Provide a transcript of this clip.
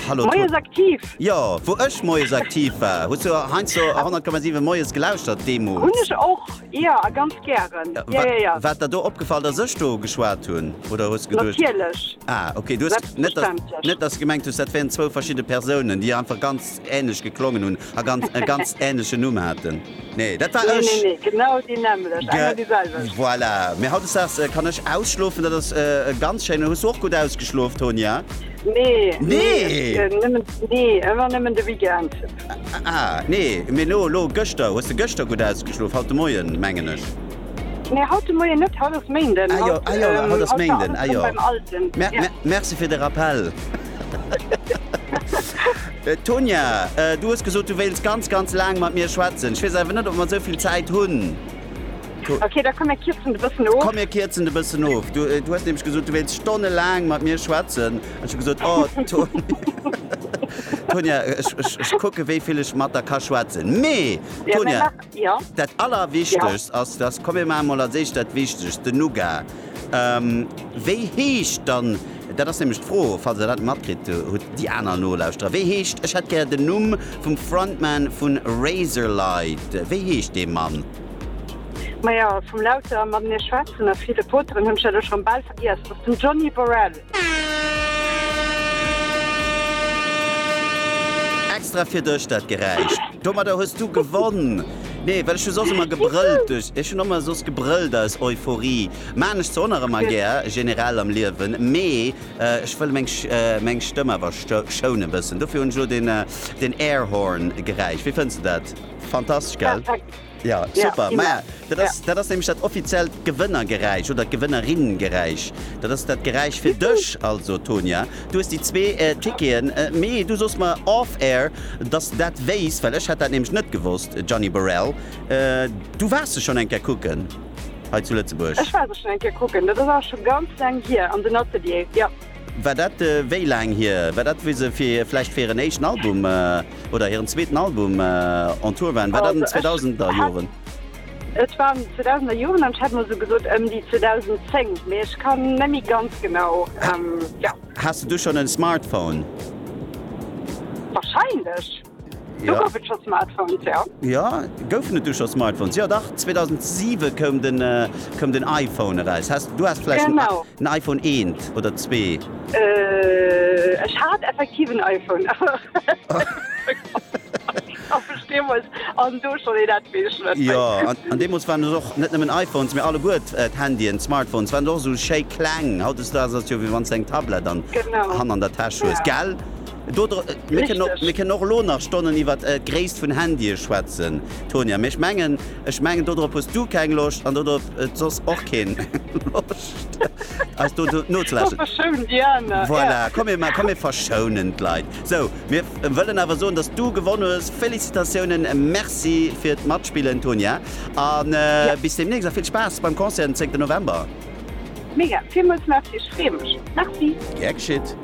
Hallo Moies aktiv Jo wou ech Moies aktiv war hues du heinz so 10,7 Moies gelauschtert Demo Hun ech och ja a ganz gären ja, ja, ja, ja. Wat dat do opgefall der sech do geschwaart hunn oder hues geduercht Natierlech Ah okay du net net ass gemengt hues dat wären zwou verschidde Persounen déi einfach ganz änlech geklongen hunn a ganz e ganz änleche Numm haten. Nee, dat war ech. Nee, nee, nee, genau déi nämmlecht, eng an déi selwecht. Voilà, mee hautdesdaags kann ech ausschlofen, dat ass ganz schéin. Hues du och gutt ausgeschlof, Tonya? Nee, nee, ëmmer nëmmen de Weekend. Ah, nee, mee elo, elo, gëschter, hues de gëschter gutt ausgeschlof? Haut de Moien, mengen ech. Nee, haut de Moien net, haut ass Méinden. Ah jo, haut ass Méinden, ah jo. Merci fir de Rappel. Äh, Tonya, äh, du hues gesot, du wéils ganz, ganz laang mat mir schwätzen. Ech weess awer net, ob mer esou vill Zäit hunn. Okay, da komm mir kierzen de bëssen of. Komm mir kierzen de bëssen of. Du, äh, du hues nämlech gesot, du wéils stonnelaang mat mir schwätzen. An ech hu gesot, oh, Tonya, äh, ech, ech, ech kucke wéi vill ech mat der ka schwätzen. Mee, Tonya, ja, dat allerwichtegst ja. ass, dass komm mir ma mol als éischt dat Wichtegst, den Nougat. Wéi heescht dann, dat ass nämlech d'Fro, falls der dat matkritt hutt, déi aner Nolauschterer, wéi heescht, ech hätt gär den Numm vum Frontman vu Razorlight, wéi heescht dee Mann? Maja, vum Lauter mat mir schwätzen a ville Poteren hunn ech dat elo schonn bal vergiess. Et ass den Johnny Borrell. Extra fir dech dat Geräisch. Domadder hues du gewonn! Nee, well ech hu soss ëmmer gebrëllt duerch, ech hunn ëmmer soss gebrëllt aus Euphorie. Maachen ech zwar och nach ëmmer gär, generell am Liewen, mee ech wëll meng meng Stëmm awer schounen bëssen. Dofir hunn ech elo den Airhorn Geräisch. Wéi fënns de dat? Fantastesch, gell? Ja, super. Maja, dat ass, dat ass nämlech dat offiziellt Gewënnergeräisch oder d'Gewënnerinnengeräisch. Dat ass dat Geräisch fir dech. Also, Tonia, du hues déi zwee Ticketen. Mee du sos mer off-air, dass de dat wéisst, well ech hätt dat nämlech net gewosst, Gianni Borel. Du waars se schonn eng Kéier kucken hei zu Lëtzebuerg? Ech war se schonn eng Kéier kucken, dat ass awer scho ganz laang hier, an den Ateliere, jo. War dat wéi laang hier? War dat wéi se fir vläicht fir hiren éischten Album oder hiren zweeten Album on Tour waren? War dat an den 2000er Joren? Et war an den 2000er Joren an ech hätt mol sou gesot ëm déi 2010, mee ech kann net méi ganz genau, jo. Has de du schonn en Smartphone? Wahrscheinlech. Do gouf et scho Smartphones, jo. Jo, goufen et do scho Smartphones? Jo dach, 2007 koum den koum den iPhone eraus. Häss du has vläicht en i en iPhone eent oder zwee? Ech hat effektiv en iPhone, awer deemools an do schonn een etwéesch méi. Jo, an deemools waren et och net nëmmen iPhones, mee alleguer d'Handyen, d'Smartphones waren och esou schéi kleng. Hautdesdaags ass jo wéi wann s de eng Tablett an hanner an der Täsch hues, gell? Mir kënnen och elo nach Stonnen iwwer d'Gréisst vun Handye schwätzen, Tonia, mee ech mengen, ech mengen dodrop hues du keng Loscht an dodrop huet soss och keen Loscht eis do nozelauschteren. Voilà, komm mir verschounen d'Leit. Sou, mir wëllen awer soen, dass du gewonn hues. Félicitatiounen, Merci fir d'Matspillen, Tonia, a bis deemnächst a vill Spaass beim Concert den 10 November. Mega, villmools Merci, ech freeë mech. Merci. Gär geschitt.